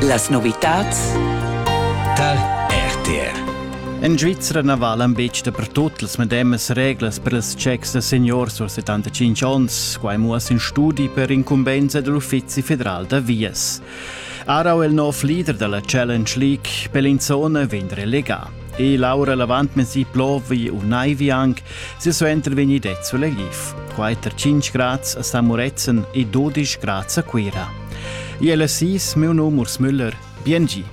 Las novitads tar RTR. En Svizzera na valan betg dapertut las medemas reglas per ils checks da seniors a 75 onns. Quai muossa in studi per incumbensa dell'Uffizi federal da vias. Arau è il nov leader della Challenge League. Per l'inzona vegn relegà. E Laura l'avantmesi plovi u naivi anc, silsuenter vegni det sulegif. Quater 5 grads a San Muretzen e 12 grads a Cuira. Iel assis, meu num Urs Müller. Bien gi!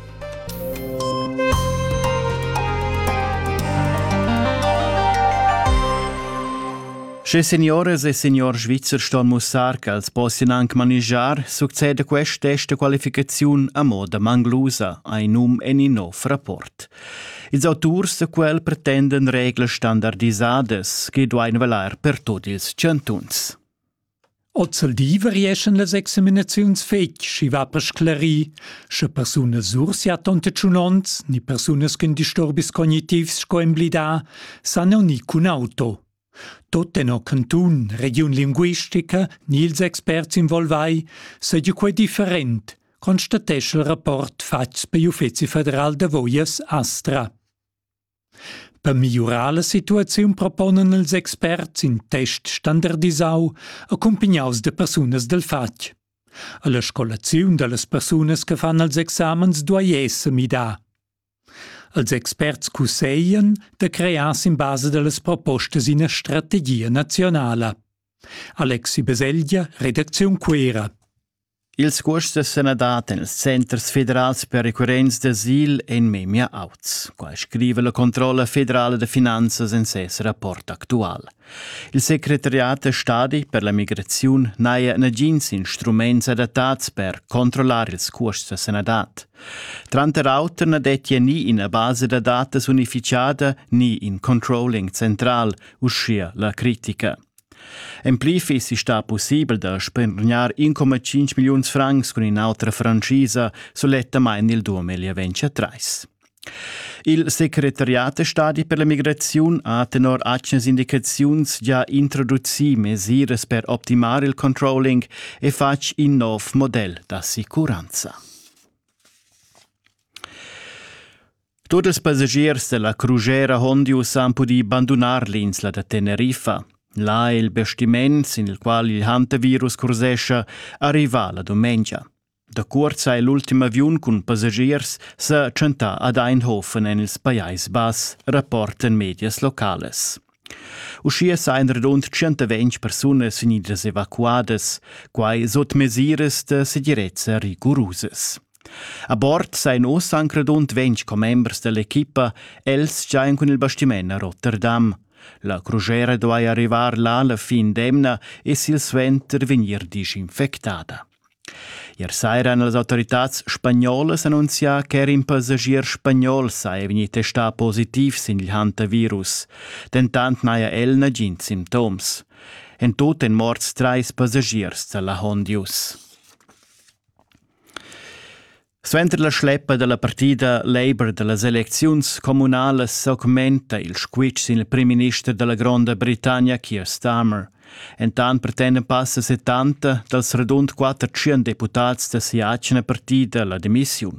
Sche senioras e senior svizzer ston mussar ch'els possian anc manigiar, succeda quest test da qualificaziun a moda manglusa, ein num en in nov rapport. Ils auturs da quel pretendan reglas standardisadas che duain valer per tut ils chantuns. Ozeldì varieschan las examinaziuns fetg, sch'i va per sclarir, sche persunas sursia tonte tschunonts ni persunas cun disturbis cognitivs sco emblidà san aunir cun auto. Tut tenor cantun, regiun linguistica ni ils experts involvai seigi quei different, constatescha il rapport fatgs pigl Uffeci federal d'avoias Astra. Per migliurar la situaziun proponan ils experts in test standardisau accumpignaus da persunas dil fatg. Alla scolaziun dallas persunas che fan els examens duei esser midà. Els experts cusseglian da crear sin basa da las propostas ina strategia naziunala. Alexi Baselgia, redacziun Cuera. Ils cuosts sun dat en ils centers federals per recurrents d'asil en memia auts. Qua scrive la controlla federala da finanzas en ses rapport actual. Il secretariat da stadi per la migraziun n'haja nagins instruments adattads per controllar ils custs da sanadad. Tranter auter na dettia ni ina basa da datas unificada ni in controlling central, uschia la critica. En pli fissi stà pussibel da spendrar 1,5 milliuns francs cun in'autra francisa sulettamain il 2023. Il secretariat da stadi per la migraziun ha tenor atgnas indicaziuns già introducì mesiras per optimar il controlling e fatg in nov model d'assicuranza. Tutti i passagiers della crugera Hondius han pudì bandunar l'insla da Teneriffa. Là è il bestiments, in il qual il hantavirus cursescha, arriva la dumengia. Da cuort ha l'ultim aviun cun passagiers sa tschentà ad Eindhoven en il Pajais Bass, rapportan medias localas. Uschia sajan radund 120 persunas vegnidas evacuadas, quai sut mesiras da segirezza rigurusas. A bord sajan oz anc radund 20 commembers dell'equipa, els giajan cun il bastiment a Rotterdam. La crugera duai arrivar là la fin d'emna e silsuenter vegnir dischinfectada. Ier saira han las autoritads spagnolas annunzià ch'er in passagier spagnol saja vegnì testà positiv sin il hantavirus. Dentant n'haja el nagins simptoms. En tut èn morts trais passagiers da la Hondius. Suenter la schleppa dalla partida Labour dallas elecziuns communalas augmenta il squitsch sin il primminister dalla Gronda Britannia Keir Starmer. Entant pretenda passa 70 dals radund 400 deputads da sia atgna partida la demissiun.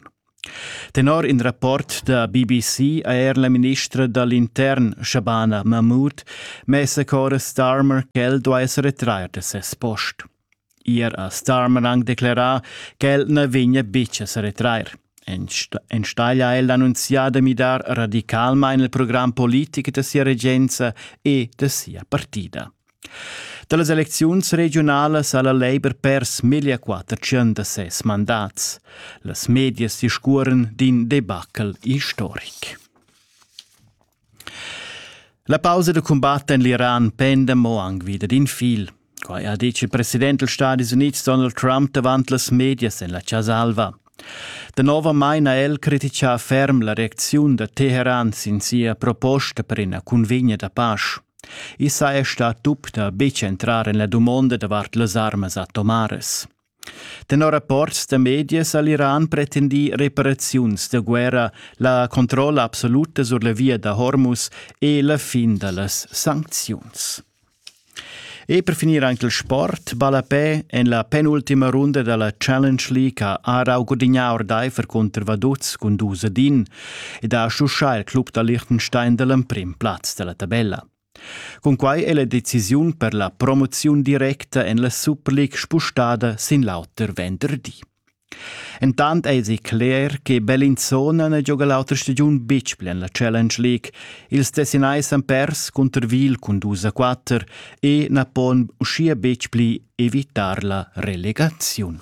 Tenor in rapport da BBC ha er la ministra dall'intern Shabana Mahmood messa cora Starmer ch'el duai sa retrair da ses post. Ir a Starmerang declerà ch'el na vegnia betg a sa retrair. Enstagl ha el annunzià da midar radicalmain il program politic da sia regenza e da sia partida. Da las elecziuns regiunalas ha la Labour pers meglio quatter tschient da ses mandats. Las medias discurren d'in debacle historic. La pausa da cumbat en l'Iran penda mo anc vida d'in fil. Quai ha ditg il president dals Stadis Unids Donald Trump davant las medias en la Casa Alva. Danovamain ha el crititgà ferm la reacziun da Teheran sin sia proposta per ina cunvegna da pasch. I saja stà tup da betg entrar en la dumonda davart las armas atomaras. Tenor rapports da medias ha l'Iran pretendì reparaziuns da guerra, la controlla absoluta sur la via da Hormuz e la fin da las sancziuns. E per finir anche il sport. Ballapè en la penultima runda della Challenge League ha Aarau gudignà ordaifer contro Vaduz cun dus ad in ed ha schuschà il club da Liechtenstein dall'emprim plaz dalla tabella. Cunquai è la decisiun per la promoziun directa en la Superliga spustada sin l'auter venderdi. Entant èsi cler che Bellinzona ne gioga l'auter stagiun betg pli en la Challenge League. Ils Tessinais han pers cunter Wil cun 2 a 4 e na pon uschia betg pli evitar la relegaziun.